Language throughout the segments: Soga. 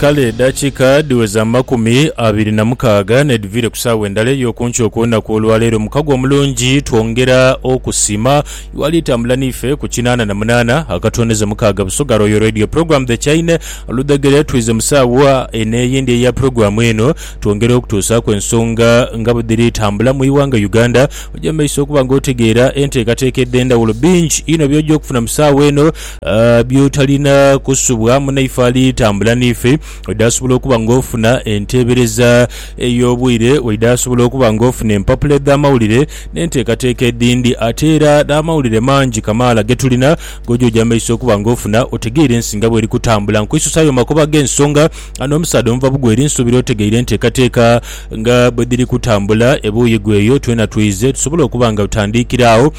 Kale edhakiika dhiweza amakumi abiri na mukaaga n'edhiviire ku saawa endala ey'oku nkyo okw'olunaku olwaleero mukago omulungi. Twongera okusiima iwali tambula n'ife ku kinaana na munaana akatwoneza mukaaga Busoga Royal Radio Program The Chaine. Oludhegere twidhze mu saawa eno eyindi eya pulogulaamu eno twongere okutuusaaku ensonga nga bwedhiri tambula mu ighanga Uganda. Oje mu maiso okuba nga otegeera enteekateeka edh'endhawulo. Bingi inho by'oja okufuna mu saawa eno. By'otalina kusubwa munaife ali tambula n'ife, oidha asobola okuba ng'ofuna enteebereza ey'obwire, oidha asobola okuba ng'ofuna empapula edh'amawulire n'enteekateeka edhindi. Ate era n'amawulire mangi kamaala ge tulina g'oja oja mu maiso okuba ng'ofuna otegeire ensi nga bw'eri kutambula. Nkwisusaayo mu makubo ag'ensonga ano omusaadha omuva bugweri, nsuubira otegeire enteekateeka nga bwe dhiri kutambula ebuuyi gweyo. Twena twidhe tusobole okuba nga tutandiikira agho.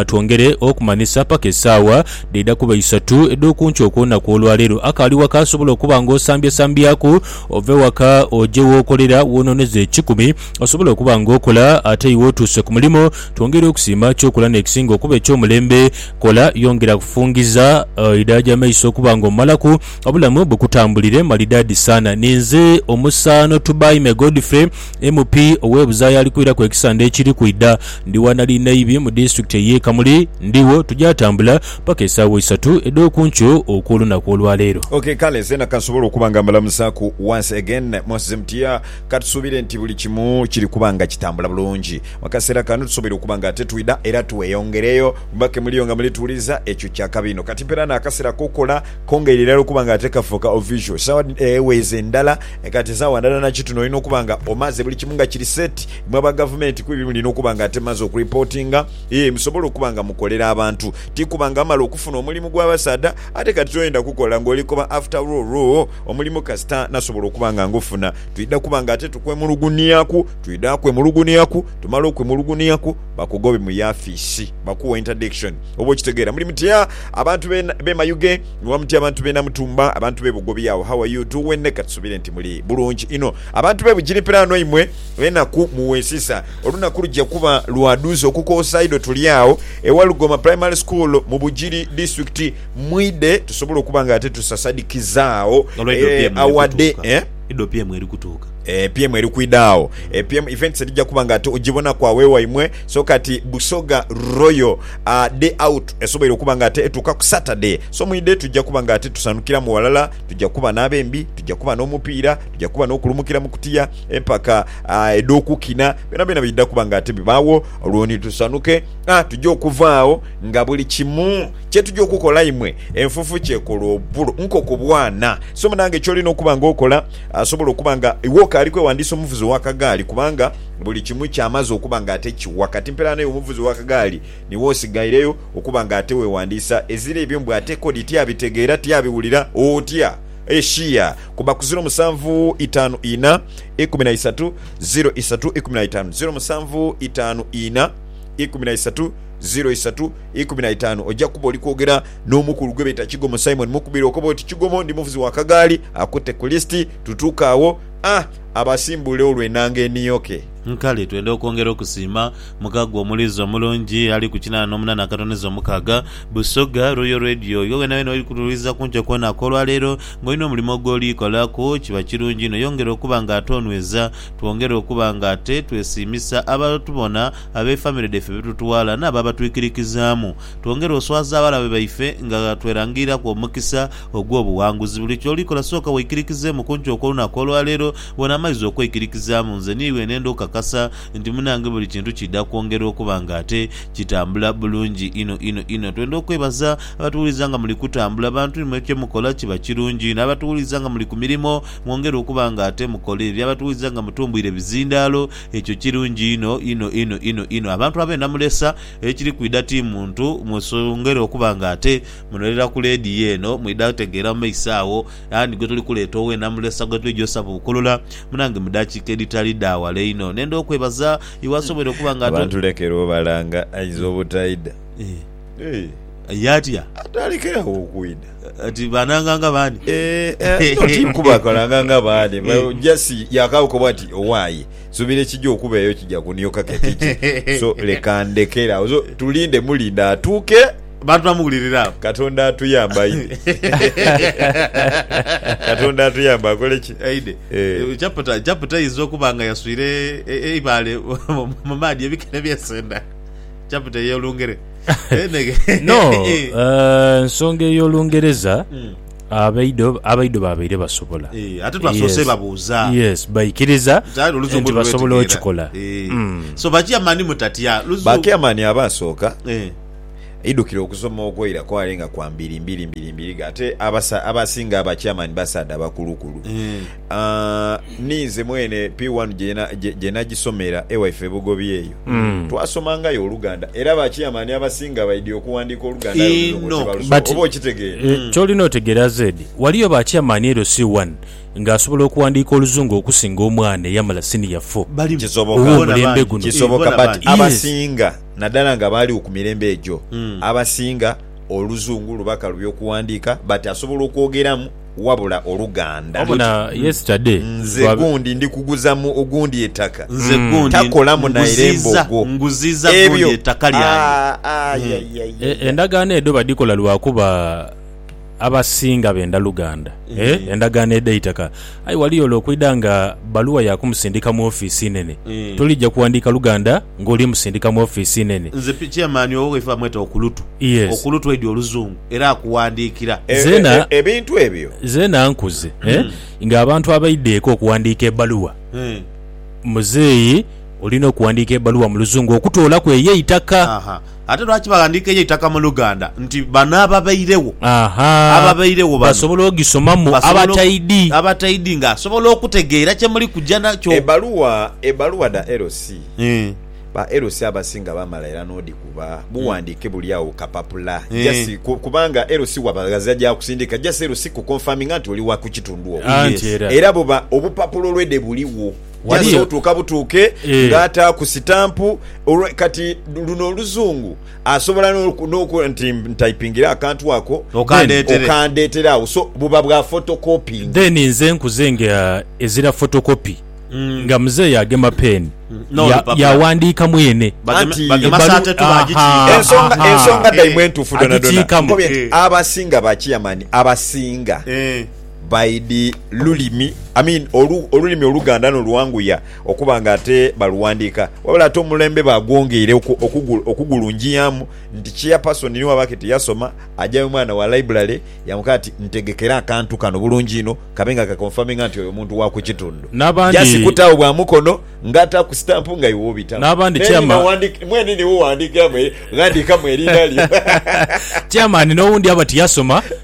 Twongere okumanhisa paka esaawa dhaidha kuba isatu edh'okunkyo okw'olunaku olwaleero. Akaali waka asobola okuba nga osambyasambyaku ove waka oje w'okolera w'onooneza ekikumi. Osobola okuba nga okola ate iwe otuuse ku mulimu. Twongere okusiima ky'okola n'ekisinga okuba eky'omulembe. Kola, yongera kufungiza idhaa gy'amaiso okuba nga omumalaku. Obulamu bukutambulire malidaadi saana. Ninze omusaano Tubaime Godfrey. MP ow'e Buzaaya ali kwiraku ekisande ekiri kwidha. Ndi wa Nali Naibi mu disitulikiti ey'e Kamuli. Ndigho tugya tambula paka esaawa isatu edh'oku nkyo okw'olunaku olwa leero. Ok, kale zeena kansobole okuba nga mbalamusaaku once again. Mwasize mutya? Katusuubire nti buli kimu kiri kuba nga kitambula bulungi. Mu kaseera kano tusoboire okuba nga ate twidha era tweyongereyo kuba ke muliyo nga muli tuwuliriza, ekyo kya kabi inho. Kati mpeera n'akaseera ak'okukola kongeire irala okuba nga ate kafuuka official. Esaawa dhino, eeh, weeza endala. E kati nsaawa ndala na kitundu olina okuba nga omaze buli kimu nga kiri set mwe aba gavumenti kuba ebyo mulina okuba nga ate mumaze okuripotinga ee musobole okuba nga mukolera abantu ti kuba nga amala okufuna omulimu gwa basaadha ate kati toyenda kukola nga oli koba after roroo omulimu kasita nasobola okuba nga ngufuna twidha kuba nga ate tukwemulugunhiaku twidha kwemulugunhiaku tumala okwemulugunhiaku bakugobe mu yafisi bakuwe interdiction oba okitegeera muli mutya abantu be be mayuge. Nuwa muti abantu be Namutumba, abantu be Bugobi agho how are you doing katusubire nti muli bulungi inho abantu be Bugiri pilaano imwe enaku muwesisa olunaku lugya kuba lwa duuza okukoosa idho tuli agho e Walugoma primary school mu Bugiri district mwidhe tusobole okuba nga ate tusasadikiza agho eeh our day eeh. Idho PM eri kutuuka. Eeh PM eri kwidha agho. Eeh PM events edhija kuba nga ate ogibonaku agho ewaimwe. So kati Busoga Royal a day out esoboire okuba nga ate etuuka ku Saturday. So mu idhe tujja kuba nga ate tusanhukiramu ghalala, tujja kuba n'abembi, tujja kuba n'omupiira, tujja kuba n'okulumukira mu kutiya, empaka a edh'okukina, byonabyona bidha kuba nga ate bibaagho olwo ni tusanhuke. A tujja okuva agho nga buli kimu kye tujja okukola imwe enfufu ky'ekola obulo nkoko bwana. So munange ky'olina okuba nga okola, a sobola okuba nga iwe okaali kwewandiisa omuvuzi w'akagaali kubanga, Buli kimu kyamaze okuba nga ate kiwa kati mpela naye omuvuzi wa kagaali niwe osigaireyo okuba nga ate wewandiisa eziro ebyo mbu ate kodi tiabitegeera tiabiwulira otya eshia kuba ku ziro musanvu itaanu ina ikumi na isatu ziro isatu ikumi na itaanu ziro musanvu itaanu ina ikumi na isatu ziro isatu ikumi na itaanu oja kuba oli kwogera n'omukulu gwebeeta Kigomo Simon mukubire okoba oti Kigomo ndi muvuzi wa kagaali akute ku list tutuuke awo a abasimbuule olwo enanga eniyoke. Nkale twenda okwongera okusiima Mukago omuliiza omulungi ali ku kinaana n'omunaana akatoniza omukaaga, Busoga Royal Radio. Iwe weenaweena oli kutuwuliriza ku nkyo kwonaka olwaleero, ng'olina omulimo ogw'oli kolaku, kiba kirungi inho yongera okuba nga ate onweza. Twongere okuba nga ate twesiimisa abatubona, ab'efamire dhaife be tutwala n'abo abatwikirikizaamu. Twongere oswaza abalabe baife nga twerangiriraku omukisa. ogw'obuwanguzi. Buli ky'oli kola sooka weikirikizeemu kunki okw'olunaku olwaleero. Bwe namaiza okweikirikizaamu, nze ni lwe nenda okukakasa nti munange buli kintu kiidha kwongera okuba nga ate kitambula bulungi inho inho inho. Twenda okwebaza abatuwuliza nga muli kutambula bantu imwe kye mukola kiba kirungi inho. Abatuwuliza nga muli ku mirimo mwongere okuba nga ate mukola ebyo. Abatuwuliza nga mutumbwire bizindaalo ekyo kirungi inho inho inho inho inho. Abantu abeena mulesa ekiri kwidha ti muntu mwesongere okuba nga ate Muno irira ku leediyo eno mwidha kutegeera mu maiso agho ani gwetuli kuleeta owe Namulesa gwetwidha osaba obukolola munange mu dakiika edhitali dha wala inho. Nenda okwebaza iwe asobweire okuba nga ate. Abantu lekera obalanga ainza obutaidha. Aye atya? Atandikire agho okwidha. Ati bananga nga baani? Eeh no tikubakolanga nga baani but just yakagho koba ati owaye nsubira ekija okubeeyo kija kunioka ke kije so leka ndekere agho so tulinde mulinde atuuke. Bantu bamuwulirira abo. Katonda atuyamba aidhe. Katonda atuyamba akole ki? Aidhe. Eh. Chapter, chapter eyinza okuba nga yaswire e- eibaale mu maadhi ebikere byesenda. Chapter ey'Olungere. Eneghe. No, Eh. eh, nsonga ey'Olungereza Mm. abaidho abaidho babaire basobola. Eh, ate twasoose Yes. babuuza. Yes, baikiriza Kyali oluzungu nti basobola lulwetegeera. okikola. Eh. Mm. So bakyamani mutatya luzungu. Bakeamani abaasooka Eh. Aidhukire okusoma okwaira kwale nga kwa mbiri mbiri mbiri mbiriga ate abasa abasinga aba chairman basaadha bakulukulu. Aah ni nze mwene P one gye na gye gye nagisomera e waife e Bugobi eyo. Twasomangayo Oluganda era ba chairman abasinga baidhi okuwandiika Oluganda aye Oluzungu Inho. tibalusobola. But Oba okitegeera? eh, ky'olina otegeera Zed, waliyo ba chairman ere C one nga asobola okuwandiika Oluzungu okusinga omwana eyamala senior four Balimu. Kisoboka. owomulembe Bona bangi. guno. Kisoboka bona but bangi. Yes. abasinga. Nadala nga baaligho ku mirembe egyo, abasinga Oluzungu lubaka lubi okuwandiika, but asobola okwogeramu wabula Oluganda. Obona yesterday Nze twa. gundi ndi kuguza mu ogundi etaka. Nze gundi Takolamu naire nguziiza, mbogo. nguziiza gundi Ebyo. etaka lyange. Aah, aah, Mm. ya, ya, ya, E, ya. endagaano edho badhikola lwakuba. Abasinga benda luganda e endagaano edhaita ka. Aye ghali ole okwidha nga bbaluwa ya kumusindika mu ofiisi enene. Tolija kuwandiika luganda ng'oli musindika mu ofiisi enene. Nze chairman owo ghaife bamweta Okulutu. Okulutu aidhi oluzungu era akuwandiikira. Zeena nkuze ng'abantu abaidha eka okuwandiika ebbaluwa. Muzeeyi olina okuwandiika ebbaluwa mu luzungu okutoolaku eyo eitaka. Ate lwaki baghandiika eyo eitaka mu Luganda? Nti bano ababairegho, Ahaa. ababairegho bano Basobola ogisomamu basobola oku- abataidhi. abataidhi nga asobola okutegeera kye muli kuja nakyo. Ebbaluwa ebbaluwa dha LC, Eh, ba LC abasinga bamala era n'odhikuba. Bughandiike buli agho ku kapapula. Eh. Just ku- kubanga LC waba aze aja kusindiika, just LC kuconfirminga nti oli wa ku kitundu okwo. Anti Yes. era. Era buba obupapula olwede buligho. yasobola otuuka butuuke eh. nga ataaku sitampu kati luno oluzungu asobola nokuba nti ntaipingire akantu ako okandeetera awo so buba bwa photocopying then nze nkuze nga eh, ezira photocopy mm. nga muzeeyi agema peeni yawandiika mwene ensonga daimwe entuufu donadonakiikamu abasinga bakiyamani abasinga eh. By the lulimi, I mean olu, olulimi oluganda no lwanguya okuba nga ate baluwandiika. Wabula ate omulembe bagwongeire oku, okugu, okugulungiamu nti chairperson ni waba kiti yasoma, ajayo mwana wa library yamukaa ati ntegekera akantu kano bulungi inho kabe nga ka confirminga nti oyo muntu wa ku kitundu. N'abandi. Just kutaawo bwa mukono nga ataaku stamp nga iwe obitaawo. N'abandi N'erinha chairma. wandika, mwene niwe wandiikamu, ghandiikamu erinha lyo. Chairman n'owundi aba tiyasoma.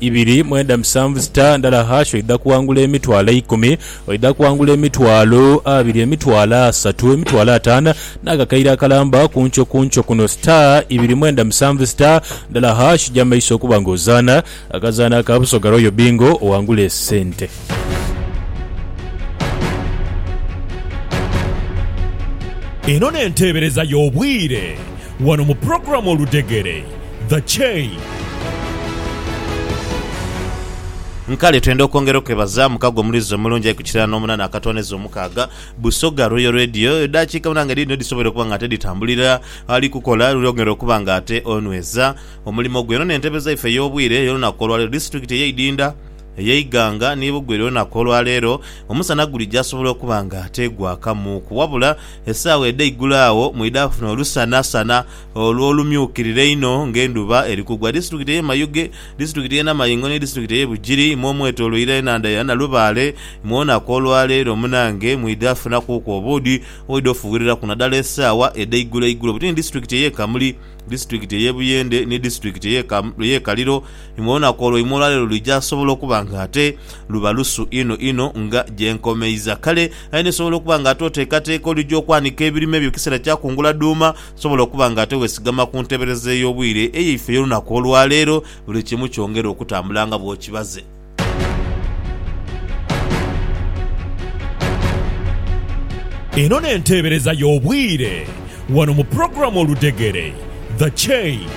Ibiri mwenda musanvu sita ndala hash oidha kuwangula emitwalo eikumi, oidha kuwangula emitwalo abiri, emitwalo asatu, emitwalo atano n'akakaire akalamba kunkyo kunkyo kuno sita ibiri mwenda musanvu sita ndala hash ja maiso okuba nga ozaana akazaano aka Busoga Royal Bingo owangule esente. Eno n'enteebereza y'obwire wano mu pulogulaamu Oludegere. The Chain. Nkale twenda okwongera okwebaza mukago omulizi omulungi aye ku kirala n'omunana akatooneza omukaaga, Busoga Royal Radio, edaakiika munaana nga dhiidhino dhisoboire okuba nga ate dhitambulira ali kukola luli okwongera okuba nga ate onweza omulimo gwe. Eno n'entebe zaife ey'obwire ey'olunaku olwaleero. Disitulikiti eye Idinda, eye Iganga ni Bugweri olunaku olwaleero omusana guli gyasobola okuba nga ate gwakamuuku wabula esaawa edha igulo agho mwidha kufuna olusanasana Olwo olumyukirira einho ng'endhuba eri kugwa, disiturikiti ey'e Mayuge, disiturikiti y'e Namayingo ni disiturikiti ey'e Bugiri imwe omwetoloire enhandha ya Nalubaale, imwe olunaku olwa leero munange mwidha funakuuku obuudhi obwidha ofughiriraku nadala esaawa edheigulo eigulo buti ni disiturikiti ey'e Kamuli, disiturikiti ey'e Buyende ni disiturikiti ey'e Kaliro imwe olunaku olwa imwe olwa leero luija sobola okuba nga ate luba lusu inho inho nga gye nkomeiza. Kale aye n'esobola okuba nga ate oteekateeka olwija okwanika ebirime byo kisera kya kungula dhuuma, Osobola okuba nga ate weesigama ku nteebereza ey'obwire eyaife ey'olunaku olwa leero, buli kimu kyongere okutambula nga bw'okibaze. Eno n'enteebereza y'obwire wano mu pulogulaamu Oludhegere, The Chain.